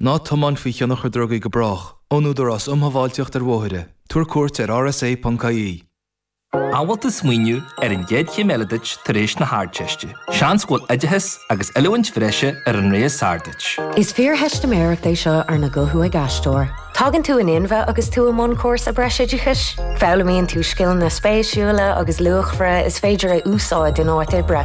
Ná tiomáin faoi thionchar drugaí go brách, ón Údarás um Shábháilteacht ar Bhóithre, tabhair cuairt ar rsa.ie. An bhfuil tú ag smaoineamh ar an gcéad chéim eile duit tar éis na hArdteiste? Seans go bhfuil oideachas agus oiliúint bhreise ar an rogha is fearr duit. Is fíortheistiméireacht é seo arna guthú ag aisteoir. Tagann tú in inmhe agus tú i mbun cúrsa breisoideachais. Foghlaimíonn tú scileanna spéisiúla agus luachmhara is féidir a úsáid in áit oibre.